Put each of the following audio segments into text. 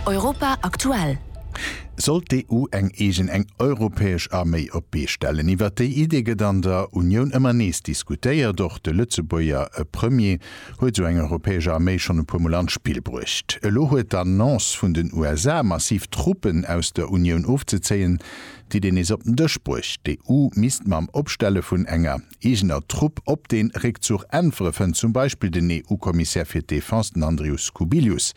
Europa aktuell. Sollt d'EU eng eegen, eng europäesch Arméi op d'Bee stellen? Iwwert déi Idee gëtt an der Unioun ëmmer nees diskutéiert. Och de Lëtzebuerger Premier huet esou eng europäesch Arméi schonn e puer Mol an d'Spill bruecht. Elo huet d'Annonce vun den USA, massiv Truppen aus der Unioun ofzezéien, d'Idee nees op den Dësch bruecht. D'EU misst mam Opstelle vun enger eegener Trupp op den Réckzuch äntwere fënnt zum Beispill den EU-Kommissär fir d'Defense, den Andrius Kubilius.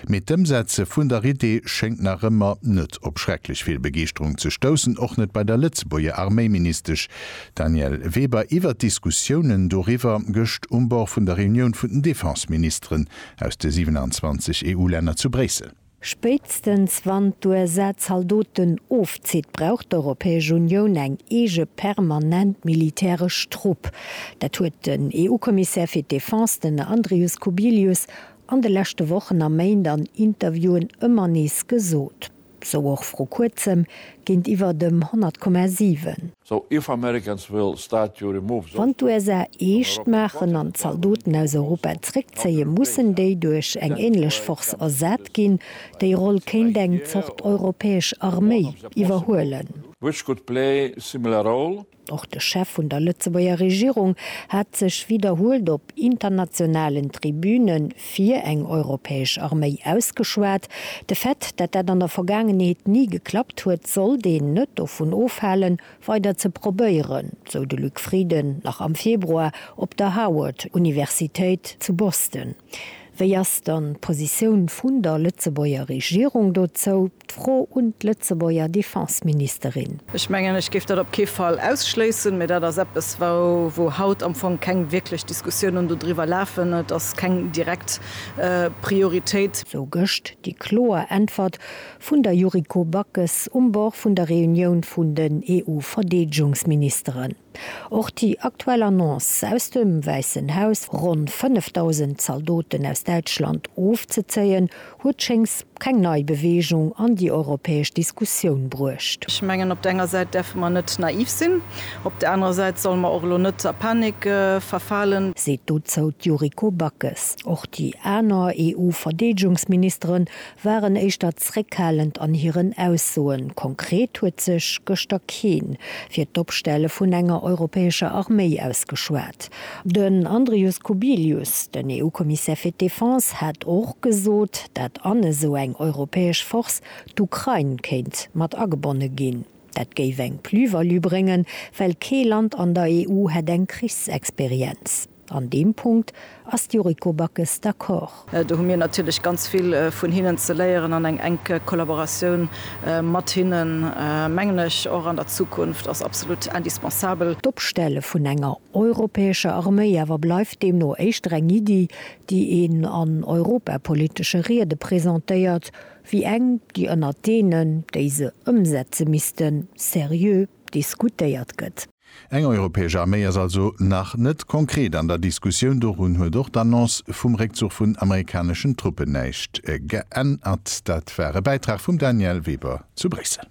Mee d'Ëmsetze vun der Idee schéngt nach ëmmer net op schrecklech vill Begeeschterung ze stoussen, och net bei der Lëtzebuerger Arméiministesch Danièle Weber iwwert d'Diskussiounen doriwwer gëscht um Bord vun der Reunioun vun den Defenseministeren aus de 27 EU-Länner zu Bréissel. Spéitstens wann d'USA Zaldoten ofzitt, brauch d'Europäesch Unioun eng eege permanent militäresch Trupp. Dat huet den EU-Kommissär fir d'Defense, den Andrius Kubilius, an de leschte Wochen a Méint an Interviewen ëmmer nees gesot. Sou och vru kuerzem géintiwwer dem 100,7. Wann d'USA eescht maachen an d'Zaldoten aus Europa zréckzéien, mussen déi duerch eng änlech Force ersat ginn. Déi Roll kéint eng Zort europäesch Arméi iwwerhuelen. Och de Chef vun der Lëtzebuerger Regierung hat sech widderhuelt op internationalen Tribüne Fir eng europäesch Arméi ausgeschwat. De Fait, dat dat an der Vergaangenheet ni geklappt huet, sollt een net dovun ofhalen, weider ze probéieren, sou de Luc Frieden nach am Februar op der Howard Universitéit zu Boston. Wéi ass dann d'Positioun vun der Lëtzebuerger Regierung dozou? D'Fro un d'Lëtzebuerger Defenseministerin. Ech mengen, ech géif dat op kee Fall ausschléissen, mä dat ass eppes, wou haut am Fong keng wierklech Diskussiounen dodriwwer lafen. Et ass keng direkt Prioritéit. Sou gëscht déi kloer Äntwert vun der Yuriko Backes um Bord vun der Reunioun vun den EU-Verdeedegungsministeren. Och déi aktuell Annonce aus dem Wäissen Haus, ronn 5.000 Zaldoten aus Däitschland ofzezéien, huet schéngs keng nei Beweegung an déi europäesch Diskussioun bruecht. Ech mengen, op der enger Säit däerfe mer net naiv sinn, op der anerer Säit solle mer och elo net a Panik verfalen. Seet dozou d'Yuriko Backes. Och déi aner EU-Verdeedegungsministeren waren éischter zréckhalend an hiren Aussoen. Konkret huet sech gëschter kee fir d'Opstelle vun enger europäescher Arméi ausgeschwat. Den Andrius Kubilius, den EU-Kommissär fir d'Defense, hat och gesot, dat an esou eng europäesch Force d'Ukrain kéint mat agebonne ginn. Dat géif eng Plus-value bréngen, well kee Land an der EU hätt eng Krichsexperienz. An deem Punkt ass d'Yuriko Backes d'accord. Do hu mir natierlech ganz vill vun hinnen ze léieren an eng enk Kollaboratioun mat hinnen, mengen ech, och an der Zukunft ass absolut indispensabel. D'Opstelle vun enger europäescher Arméi awer bleift deemno éischter eng Iddi, déi een an europapolitesche Riede presentéiert, wéi eng, déi ënnert deenen, déi se ëmsetze missten, seriö diskutéiert gëtt. Eng europäesch Arméi ass also nach net konkret an der Diskussioun. Dorun huet och d'Annonce vum Réckzuch vun amerikaneschen Truppen näischt geännert. Dat war e Bäitrag vum Danièle Weber zu Bréissel.